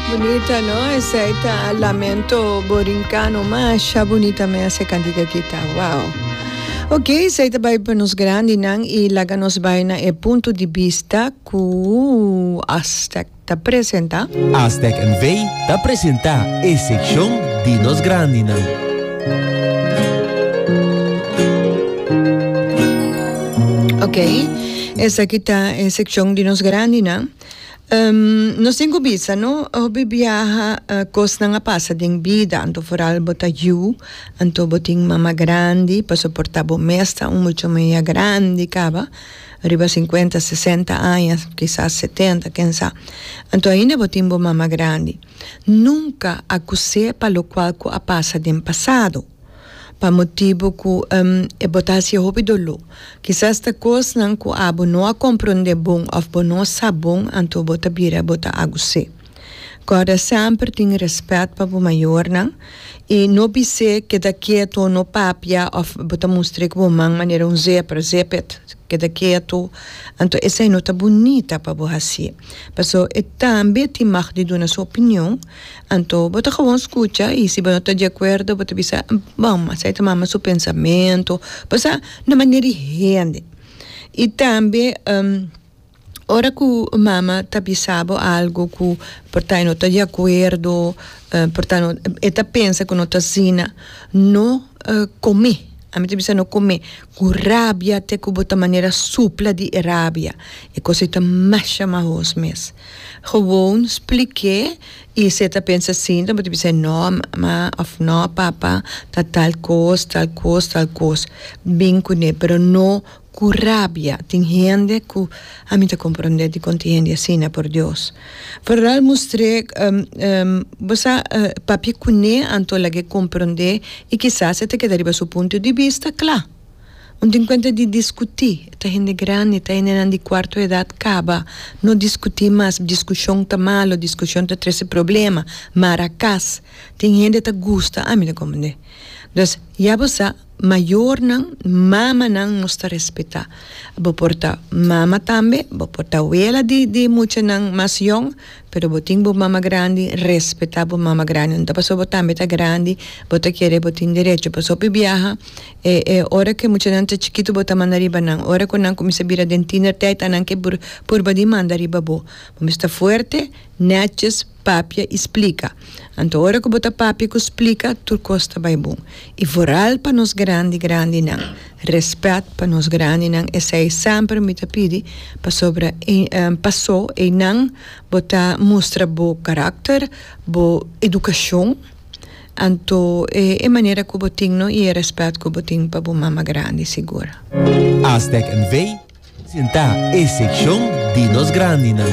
Bunita no esey ta lamento borincano masha bunita me hace cantica kita wow ok esey ta bay pa nos grandi nan y laga nos bay na e punto di bista cu Aztec ta presenta. Aztec NV ta presenta e seccion di nos grandi nan. Ok esaki ta e seccion di nos grandi nan. Nos tin cu bisa no, hopi biaha cosnan a pasa den bida, anto foral bo ta yu, anto bo tin mama grandi, pa soporta bo mes ta un mucho men ya grandi caba, riba cincuenta, sesenta aña, kisas setenta, ken sa, anto ainda bo tin bo mama grandi. Nunca acuse pa locual cu a pasa den pasado. Pa motibu cu e bota haci hopi doló. Kisas ta cosnan cu abo no a comprende bon of bo no sa bon anto bo ta bira bo ta agusé. Corda semper tin respet pa bo mayornan y no bisé keda keto, no papia of bo ta mustr'é cu bo man manera un zebra, zip it, keda keto, anto esai no ta bunita pa bo haci. Paso e tambe tin mag di duna su opinion. Anto bo ta gewoon skucha i si bo no ta di akuerdo bo ta bisa bo mas esei ta mama su pensamentu pasá na manera di hende i tambe ora ku mama ta bisa bo algu ku por ta e no ta di akuerdo por ta e ta pensa ku no ta asina no kome ami ta bisa no kome ku rabia te ku bo ta manera supla di e rabia e kos ei ta masha mas hos mes. Gewoon spliké i se ta pensa asin tambe ta bisa e no ma of no papa ta tal kos tal kos tal kos bin kuné pero no ku rabia tin hende ku ami ta komprondé di konta hende asina por Dios Fernal mustr'é bo sa papia kuné anto lag'é komprondé i kisas e ta keda riba su punto di bista kla. Un tin kuenta di diskutí, e ta hende grandi, e ta hendenan di kuarto edat, kaba, no diskutí mas, diskushon ta malu, diskushon ta trese problema, mara kas. Tin hende ta gusta, ami lo komprendé. Entos, ya bo sa, mayornan, mamanan nos ta respetá. Bo por ta mama tambe, bo por ta awela di di muchanan mas yòn. Pero bo tin bo mama grandi, respetá bo mama grandi. No ta pasobra bo tambe ta grandi bo ta kere bo tin derecho. Pas hopi biaha e e ora ku e muchanan ta chikitu bo ta manda riba nan. Ora ku nan kuminsha bira den tiener tèit a nan ke por purba di manda riba bo. Bo mes ta fuerte, nètjes, papia i splika. Anto ora ku bo ta papia ku splika tur kos ta bai bon. I vooral pa nos grandi grandinan. Respet pa nos grandinan esei semper mi ta pidi pasobra paso einan bo ta mustra bo karakter, bo edukashon anto e e manera ku bo tin no i e respet ku bo tin pa bo mama grandi sigur. Aztec NV. presentá e sekshon di nos grandinan.